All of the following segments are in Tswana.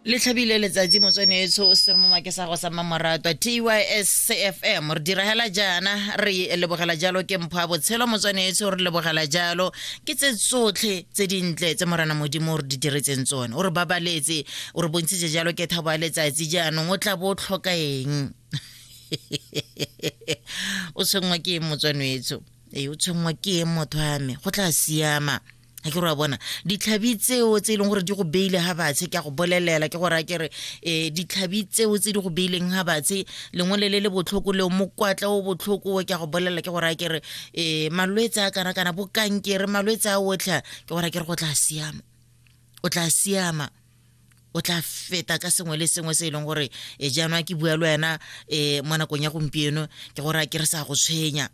le tlhabile letsatsi motswane etsho o se mo make sa go sa mmamoratwa tys cfm re diragela jaana re lebogela jalo ke mpho a botshelo motswane etsho re lebogela jalo ke tse tsotlhe tse dintle tse morana modimo o re di diretseng tsone o re babaletse o re bontshitse jalo ke thabo ya letsatsi jaanong o tla bo o tlhoka eng o tshwenngwa ke eng motswane etsho ee o tshwenngwa ke eng motho ame go tla siama ke gore wa bona ditlhabi tseo tse e leng gore di go beile ga batshe ke a go bolelela ke gore a ke re um ditlhabi tseo tse di go beileng ga batshe lengwe le le le botlhoko leo mokwatla o botlhoko ke a go bolelela ke gore a ke re um malwetse a kana kana bokankere malwetse a otlha ke gore a ke re go tla siama o tla siama o tla feta ka sengwe le sengwe se e leng gore e jaanong ke bua le wena um mo nakong ya gompieno ke gore a ke re sa go tshwenya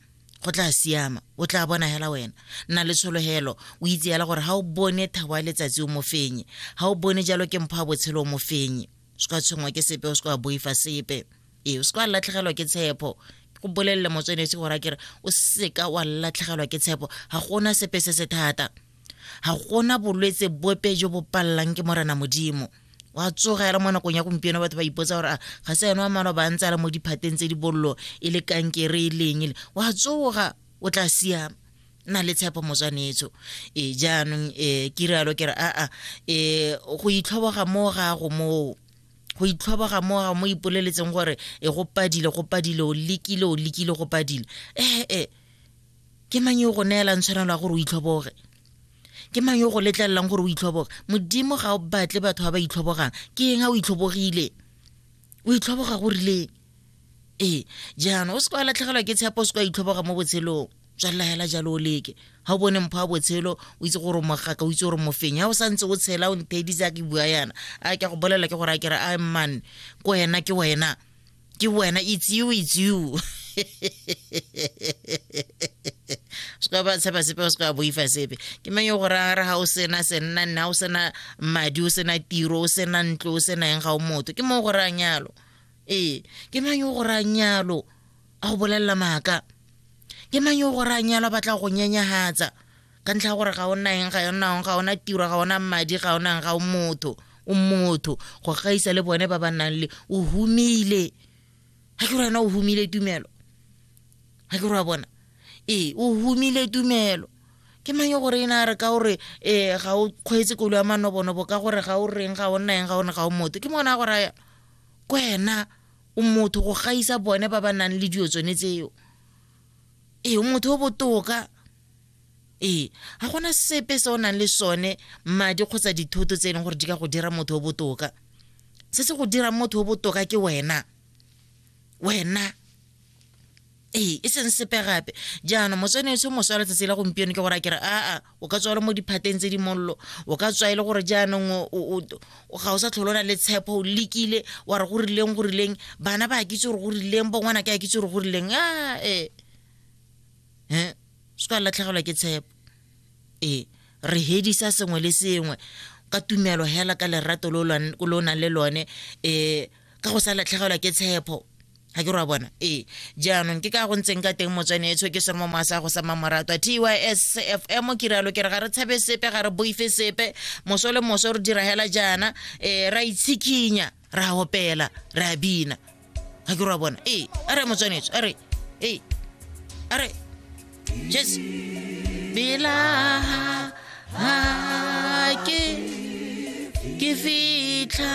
go tla siama o tla bona hela wena nna le tshologelo o itse hela gore ga o bone thabo ya letsatsi o mofenye ga o bone jalo ke mpho ya botshelo o mofenye o se ka tshwengwa ke sepe o se ka boifa sepe ee o se ka latlhegelwa ke tshepo go bolelele motswenesi gore a kere o seka wa latlhegelwa ke tshepo ga gona sepe se se thata ga gona bolwetse bope jo bo palelang ke morena modimo wa tsogela mo nakong ya gompieno batho ba ipotsa gore ga se ene wa mano ba ntse a le mo diphateng tse di bollo e le kankere e leng ele wa tsoga o tla siama na le tshepo motswanetso e jaanong e ke rialo ke re aa e go itlhoboga mo gago moo go itlhoboga mo gago mo ipoleletseng gore e go padile go padile o lekile o lekile go padile ee eh, eh. ke mang yo go neelang tshwanelo ya gore o itlhoboge ke mang yo go letlelelang gore o itlhoboge modimo ga o batle batho ba ba itlhobogang ke eng a o itlhobogile o itlhoboga go rileng ee jaanong o se kwa latlhegelwa ke tshepo o se kwa itlhoboga mo botshelong tswalela hela jalo o leke ga o bone mpho wa botshelo o itse gore mogaka o itse gore mofeng ya o sa ntse o tshela o nthedisa ke bua yana a ke go bolela ke gore a kere a mman ko wena ke wena ke wena it's you it's you se ka ba tshepa sepe o se ka boifa sepe ke mang yo go rara ga o sena senna nna o sena madi o sena tiro o sena ntlo o sena eng ga o motho ke mo go rayang yalo ee ke mang yo go rayang yalo a go bolelela maaka ke mang yo go rayang yalo a batla go nyenyagatsa ka ntlha ya gore ga o naeng ga yonang ga ona tiro ga ona madi ga onang ga o motho o motho go gaisa le bone ba ba nang le o humile ga ke gore wena o humile tumelo ga ke gore wa bona ee o humile tumelo ke mang yo gore e na re ka gore um ga o kgweetse kolo ya manobonobo ka gore ga o reng ga o naeng ga one ga o motho ke mona gore ya ko ena o motho go gaisa bone ba ba nang le dilo tsone tseo ee o motho o botoka ee ga gona sepe se o nang le sone madi kgotsa dithoto tse e leng gore di ka go dira motho o botoka se se go dirang motho o botoka ke wena wena ee e seng sepe gape jaanong motswene etsho moswa letsatsi la gompieno ke gore a kere aa o ka tswa le mo diphateng tse di mollo o ka tswa e le gore jaanong ga o sa tlholona le tshepo o lekile wa re go rileng go rileng bana ba kitse gore go rileng bongwana ke a kitse gore go rileng a ee um se ka latlhegelwa ke tshepo ee re hedisa sengwe le sengwe ka tumelo hela ka lerato lo lo nang le lone um ka go sa latlhegelwa ke tshepo ga ke ra bona ee jaanong ke ka go ntseng ka teng motswane e tshoke sere mo moasa go sama morato a tys fm ke ralo ke re ga re tshabe sepe ga re boife sepe moso le moso re dira hela jaana um ra itshikinya re a opela re a bina ga ke re wa bona ee a re motswanetso a re ee a re jes pela ha ke ke fitlha